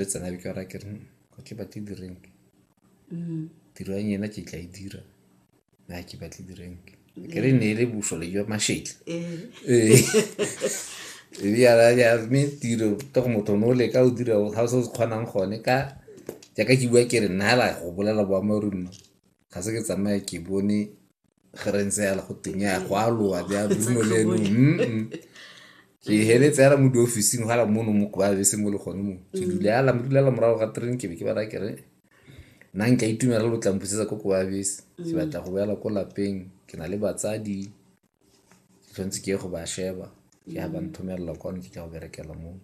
le tsena be ke ba raya ke re ga ke batle di-rank tiro ya nyena ke tla e dira na ke batle di-rank ke re ne e le bosole jwa mashetle mme tiro to go motho ne o leka o dira ga o se o se kgonang gone ka jaaka ke bua ke re nna la go bolela boammaaruri mma ga se ke tsamaya ke bone ge re ntse yala go teng ya go aloa ya bruno le eno ke heletse yala mo diofficing gala mono mo kwa bese mo le gone mo ke mm. dula yala mo dulela morago ga train ke be ke bara kere nna nka itumela lo tlampusetsa ko kwa bese ke mm. batla go boela ko lapeng ke na le batsadi ke tshwanetse ke ye go ba sheba ke ya ba mm. nthomelela kwane ke ka go berekela mono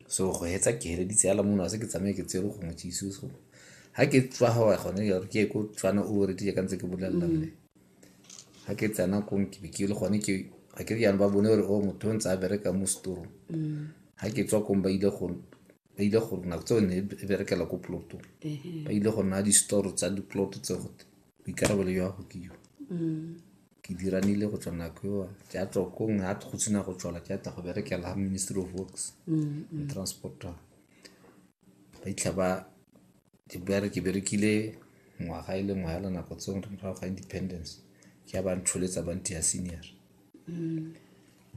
So go fetsa ke feleleditse fela mona se ke tsamaye ke tsere gongwe jesu so ga ke tswa gawa gone jalo ke ye ko tswana o retile ka ntse ke bolelela mme ga ke tsena kong ke ke le gone ke ga ke jaanong ba bone gore o oh, motho o ntse a bereka mo storong ga ke tswa kong ba ile go ba ile go nako tseo ne e berekela ko ploto ba ile go nna di-store tsa di-plot tse gote boikarabelo jwa go ke yo ke dira nile go tswa nako eo ke a tswa kong ga go sena go tswala ke ata go berekela ga ministry of works and transport ba itlha ba ke bere ke berekile ngwaga e le ngwa hela nako tseo re morago ga independence ke ya ba ntsholetsa ba ntia senior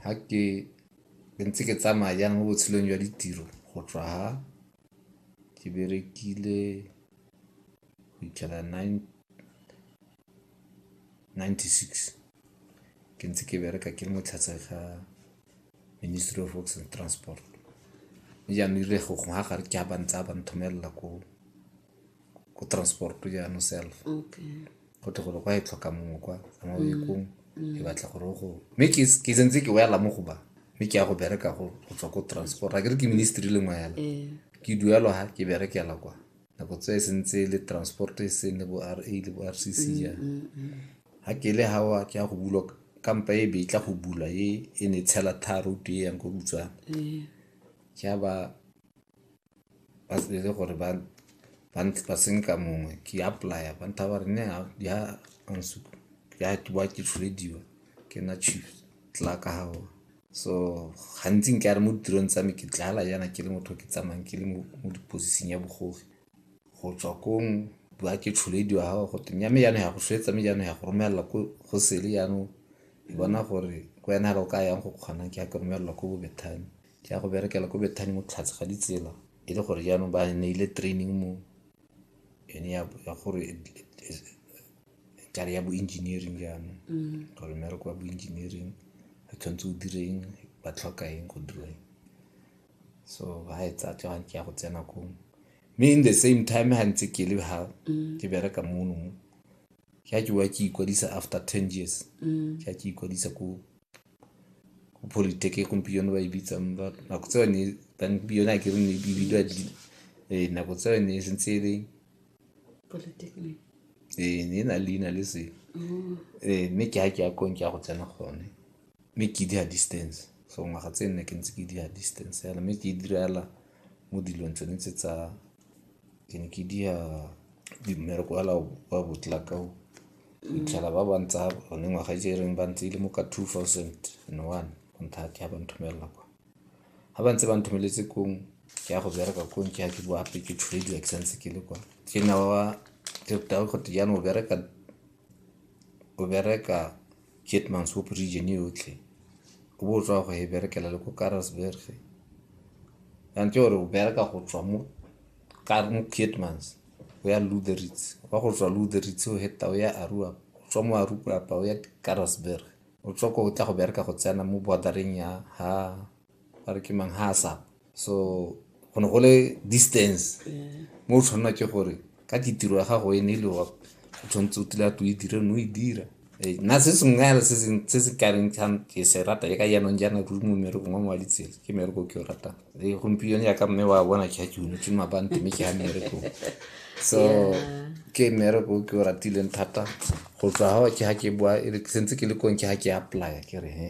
ga ke ke ntse ke tsamaya jang mo botshelong jwa ditiro go tswa ha ke berekile go itlhela nine ninety-six. Ke ntse ke bereka ke le mo tlase ga Ministry of Works and Transport. Mme jaanong erile go gongwe ga gare ke ha ba ntse ba nthomella ko ko transport-o jaanong self. Okay. Go tle gore kwa e tlhoka mongwe kwa ka mo bekong e batla gore o go mme ke ke sentse ke boela mo go ba mme ke ya go bereka go go tswa ko transport a ke re ke ministry le ngwe fela. Ee. Ke duelwa ha ke berekela kwa. nako tse e sentse le transport e seng le bo ra le bo rcc ya ga ke le gawa ke ya go bulwa kampa e be tla go bula e e ne tshela tharo e yang ko butswana ke a ba ba tsebele gore ba ba ntse ba senka mongwe ke apply-a ba ntha ba re ne ya ansuka ya ke ba ke tshwediwa ke na chief tla ka gawa so gantsi nke a re mo ditirong tsa me ke tlala jaana ke le motho ke tsamayang ke le mo diposising ya bogogi go tswa kong ba ke tsholedi wa gago gote nya me jaanong ya go swetsa me jaanong ya go romelela go sele jaanong ke bona gore ko wena ga o ka yang go kgonang ke ya ke romelela ko bobethane ke ya go berekela ko bethane mo tlhatshe ga ditsela e le gore jaanong ba neile training mo yone ya ya gore it- it- is- kare ya bo-engineering jaanong gore mmereko wa bo-engineering re tshwanetse o direng ba tlhoka eng go dira eng so ga e tsa tsa ke ya go tsena kong mme in the same time ga ntse ke le ga ke bereka mono mo ke a ke wa ke ikwadisa after ten years ke a ke ikwadisa ko Politiki e gompieno ba e bitsang ba re nako tse yone gompieno ga ke re e bidiwa nako tse yone e santse e le ee ne e na le leina le se ee mme ke ga ke ya ko ke ya go tsena gone mme ke dira distance so ngwaga tse nne ke ntse ke dira distance fela mme ke e dira fela mo dilong tsone tse tsa. Ke ne ke diya mmereko wa wa botlelaka o. O fitlhela ba ba ntsa one ngwaga e jereng ba ntse e le mo ka two thousand and one go nthata ba nthomella kwa. Ga ba ntse ba nthomeletse kong ke ya go bereka kong ke ya ke boa gape ke tshwediwa ke sa ntse ke le kwa. Ke nna wa wa jaanong o bereka Keetmanshoop region yotlhe, o bo o tswa go e berekela le ko Karasburg. Jaanong ke gore o bereka go tswa mo Keetmans o ya Lourits, wa go tswa Lourits o heta o ya Aruap, o tswa mo Aruap o ya Karasburg. O tswa ko o tla go bereka go tsena mo border-eng ya ha ba re ke mang ha a sapa so go ne go le distance mo o tshwanela ke gore ka ke tiro ya gago e ne e le wa o tshwanetse o tila to e dire no e dira Eh, nna se sengwe fela se se- se se kareng kgang ke se rata e ka jaanong jaana ruri mo mmerekong wa mo wa ditsela ke mmereko o ke o ratang e gompieno yaka mme wa bona ke ga ke unetse mabante mme ke ga mmerekong so ke mmereko o ke o ratileng thata go tswa ga ke ga ke boa e re- sentse ke le kong ke ga ke apply ke re he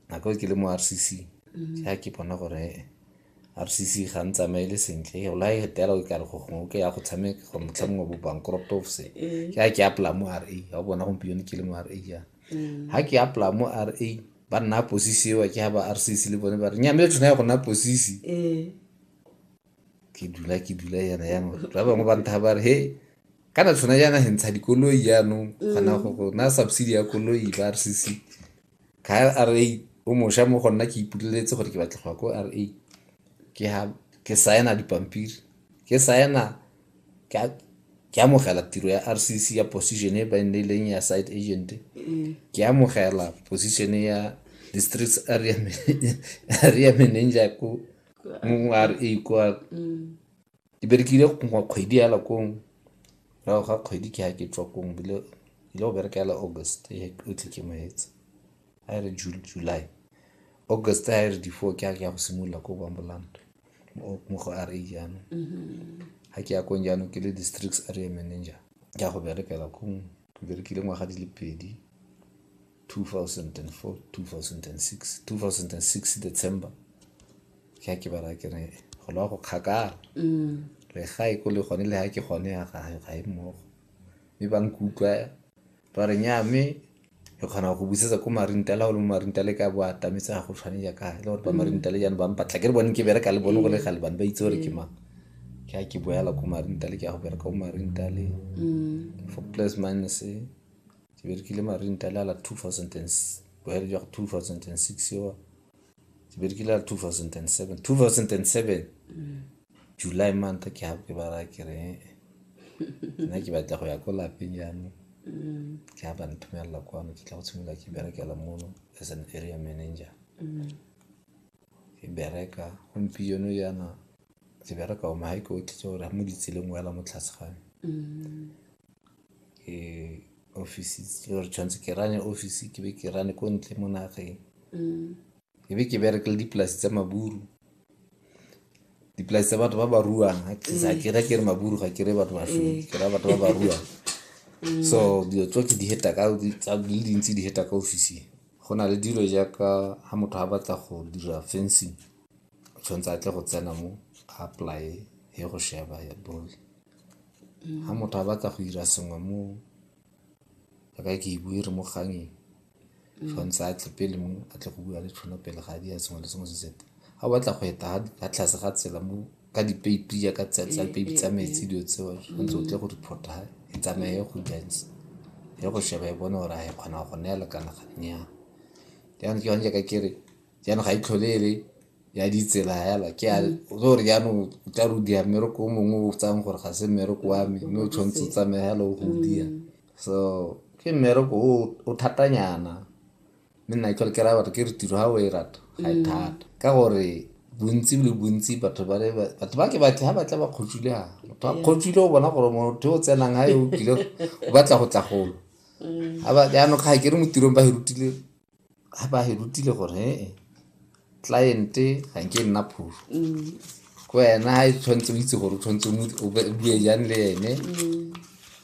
nako e ke le mo RCC mm-hmm. ga ke bona gore RCC ga ntsamaele sentle e ola e tela o kare go gongwe ke ya go tshameka go motlhamong wa bo bankrupt of se eh. ke a ke apply mo RA ga bona gompieno ke le mo RA ya mm. ha ke apply mo RA ba nna posisi eo ke ha ba RCC le bone ba re nyame tshwana ya go nna posisi eh. ke dula ke dula yana yanong ba bangwe ba ntha ba re he kana tshwana yana he ntsha dikoloi yanong kgona go go na subsidy ya koloi ba r c c ka r a o mosha mo gonna ke ipuleletse gore ke batla go ya ko r a ke ha ke saena dipampiri ke saena ke amogela tiro ya r c c ya position e ba e nneleng ya side agent ke amogela position ya districts area manager ko mongwe a re e kwa ke berekile gongwa kgwedi ya lakong rago ga kgwedi ke ga ke tswa kong bile ile go bereka yala august e o tle ke moetse a e re july august a e re di-four ke a ke ya go simolola ko bamboland mo go a re jaanong ga mm-hmm. ke ya kong jaanong ke le districts area manager ke ya go berekela kong ke berekile ngwaga di le pedi 2004 2006 2006 december ke ha ke ba ra ke re go lwa go kgakala le ga e ko le gone le ha ke gone ya ga ga e mmogo mme ba nkutlwa ba re nya mme re kgona go busetsa ko marintala o le mo marintale ka bo atametse ga go tshwane jaaka e le gore ba marintale jaanong ba mpatla ke re bone ke bereka le bone go le gale bane ba itse gore ke mang ke a ke boela ko marintale ke ya go bereka ko marintale for plus minus ti berkeli marin ta lala 2010 boyer jwa 2006 wa ti berkeli lala 2007 2007 july month ke ha ke bara ke re nna ke batla go ya ko lapeng jaanong ke ha ba nthomelela kwano ke tla go tshimolola ke berekela mono as an area manager ke bereka gompieno jaana ke bereka o mahaike o tlhetse gore ga mo ditseleng o ela mo tlase gane tshwanetse ke rane office ke be ke rane ko ntle mo nageng ke be ke berekele dipolasi tsa maburu dipolasi tsa batho ba ba ruang ga ke ra ke re maburu ga ke re batho ba shwele ke ra batho ba ba ruang so dilo tso ke di heta ka tsa di le dintsi di heta ka ofising go na le dilo jaaka ga motho ga batla go dira fencing o tshwanetse a tle go tsena mo a apply ye go sheba ya bone ga motho a batla go dira sengwe mo a ka ke e bue re mo kgangeng tshwanetse a tle pele mo a tle go bua le tshwana pele ga a dira sengwe le sengwe se seta ga o batla go eta ga tlase ga tsela mo ka dipeipi ya ka tsela tsa peipi tsa metsi dilo tseo tshwanetse o tle go reporta e tsamaye go jantsi ya go sheba e bone gore a e kgona go neela kana ga nnyang jaanong ke yone jaaka ke re jaanong ga e tlhole e le ya ditsela fela ke a mm. re gore jaanong o tla re o dia mmereko o mongwe o tsang gore ga se mmereko wa me mme o tshwanetse o tsamaya fela o go o dia mm. so ke mmereko o thatanyana mme nna tlhole ke raya batho ke re tiro ga o e rata ga e mm. thata ka gore bontsi le bontsi batho ba batho ba ke batle ga batla ba kgotswile ga motho a kgotswile o bona gore motho o tsenang ga e o kile o batla go tla golo jaanong ga ke re mo tirong ba e rutile ga ba e rutile gore ee cliente ga nke e nna phuru mm. ko wena ga e tshwanetse o itse gore o tshwanetse o bue jang le ene mm.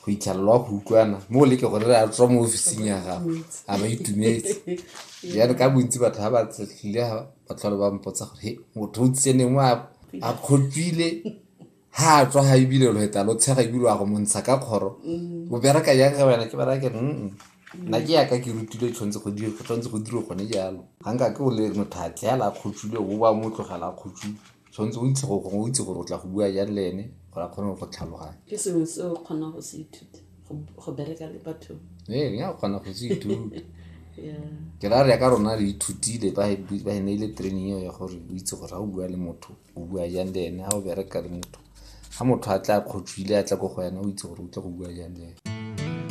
go itlhalelwa go utlwana mo o leke gore re a tswa mo officing ya gago a ba itumetse jane ka bontsi batho ga ba tletlile ga ba tlhole ba mpotsa gore he motho o tsene mo a kgopile ha a tswa ha ebile lo eta lo tshega ebile a go montsha ka kgoro o bereka jang ga wena ke bereka ke mm nna ke yaka ke rutile tshwanetse go dira go tshwanetse go dira gone jalo ga nka ke o le motho a tleela a kgotsule o ba mo tlogela a kgotsule tshwanetse o itse go gongwe o itse gore o tla go bua jang le ene gore a kgone go tlhaloganya ke sengwe se o kgona go se ithuta go- go bereka le batho ee ya kgona go se ithuta Yeah. ke ra re ya ka rona re ithutile ba ba e ne e le training eo ya gore o itse gore ga o bua le motho o bua jang le ene ga o bereka le motho ga motho a tla kgotswile a tla ko go wena o itse gore o tle go bua jang le ene.